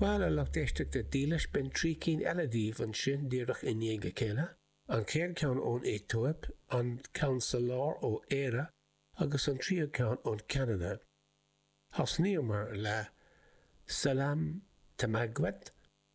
Bhuel a lucht éisteachta dílis b'in trí cinn eile daoibh ansin díreach i ndiaidh a chéile, an chéad cheann ón Aetóip, an ceann sa lár ó Éire agus an tríú ceann ón Ceanada. Thosnaíomar le Selam Temagwet.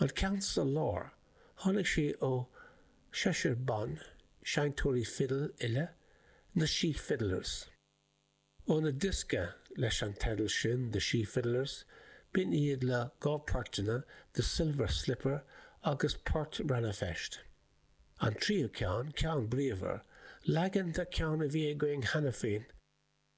An ceann sa lár, tháinig sé ó sheisear ban seinnteoirí fidil uile, na SíFiddlers. Óna diosca leis an teideal sin, The SíFiddlers, b'in iad le dhá phortanna, The Silver Slipper agus Port Rann na Feirste. An tríú ceann, ceann bríomhar, leagan de ceann a bhí againn cheana féin,